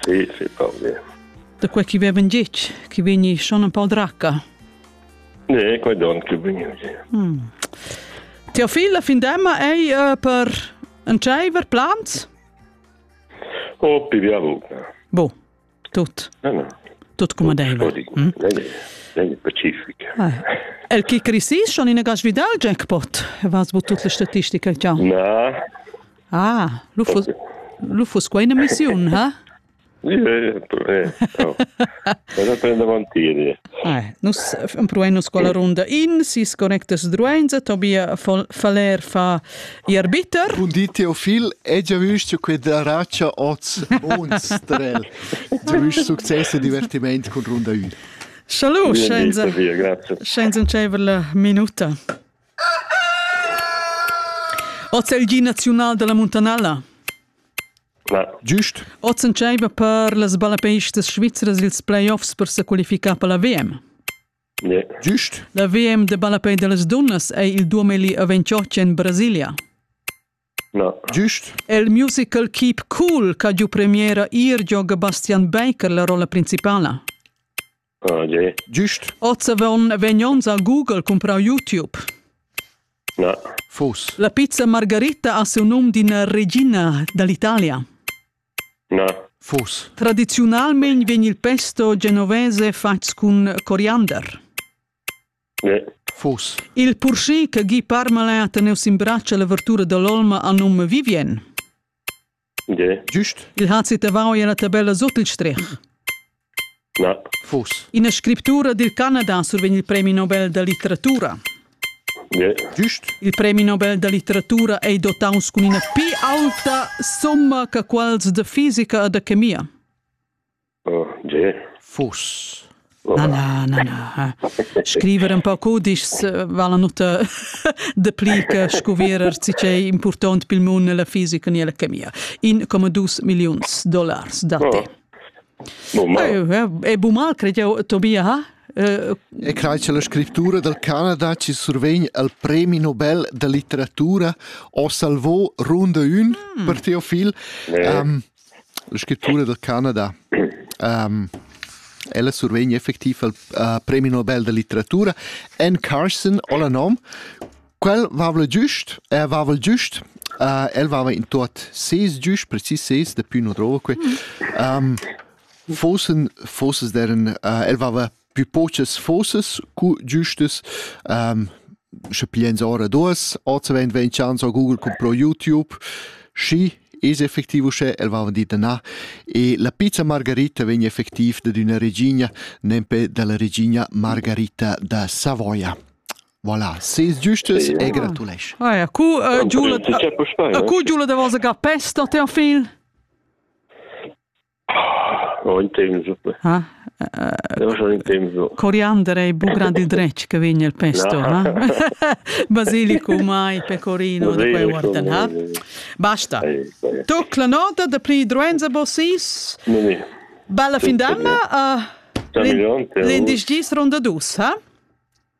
Sì, sì, Pauli. Da quei chi vevan gitg, chi vegni schon un po dracca. Ne, quei don chi vegni gitg. Mm. Teofila findemma ei uh, per entscheiver plans? Oh, piviavu. Bo, tut. No, no. Tut come deve. Mm? Lei è pacifica. Ah. El chi crisis schon in gas vidal jackpot? Vas bu tut le statistiche ciao. Na, Ah, lu fuss, lu fuss quei ina missiun, ha? Nus empruein nus quella runda in, si sconectas druenza, Tobia Faller fa ir bitter. Bun di Teofil, e già vist che da raccia oz unstrel. Già vist succes e divertiment con runda ü. Salut, scienza. Scienza un minuta. Oz è il gi naziunal da la muntanella. Giust. Oz entscheiva per las ballapeistas svizras ils playoffs per sa qualificar per la VM. Yeah. Giust. La VM de ballapei de las dunnas è il 2028 en Brasilia. No. Giust. El musical Keep Cool, ca giu premiera ir gioga Bastian Baker la rolla principala. Giust? Oz avon vegn onns a Google cumprau YouTube. Na. Fus. La pizza Margarita ha siu num d'ina regina dall'Italia. Na. Fus. Tradiziunalmein vegn il pesto genovese fatgs cun coriander. Ne. Fus. Il purschì che Guy Parmalin ha tenuto in braccio all'avertura dell'olma ha num Vivien. Giust. Il Hazit davant ei la tabella sut il strech. Na. Fus. Ina scriptura dil Canada survegn il premi Nobel da litteratura. Yeah. Giust. Il premi Nobel da litteratura ei dotaus cun ina pi aulta summa che quels da fisica e da chemia. Oh, tge? Fuss. Na, na, na, na. Scriver un po cudischs vala nuta de pli che scuvierer si c'è important pel mun la fisica ni la chemia. In come dus millions dollars da te. Oh. È bu mal, credo, Tobia, ha? E crai che la scrittura del Canada ci survegn al premi Nobel da litteratura o salvò ronda un mm. per Teofil. Um, La scrittura dal Canada ella survegn effectiv il premi Nobel da litteratura. Anne Carson ho la nom. Quel vavla giust, el vavla giust. Uh, el vava in tot ses gius, precis ses, da più non drova que. Um, fossen, fossen deren, uh, el vava pü pochas fossas cu giüstas. Ähm, sche piens ora duas, oz vegn vegn chans a Google compro YouTube, schi es effectiv uschè, el va vendita na. E la pizza Margarita vegn effectiv dad üna regina, nempe dalla regina Margarita da Savoia. Voilà, ses giustes e gratulesc. Ah ja, cu uh, Giulia, a cu Giulia da vosa ga pesta te en fil? Ho in temps. Ha? Coriander ei bu grand il dretg che vegn el pesto, no? Basilicum ai, pecorino, da quei guardan, ha? Basta. Tuc la nota da pri druenza bossis. Bella fin d'anna. L'indice ronda dus, ha?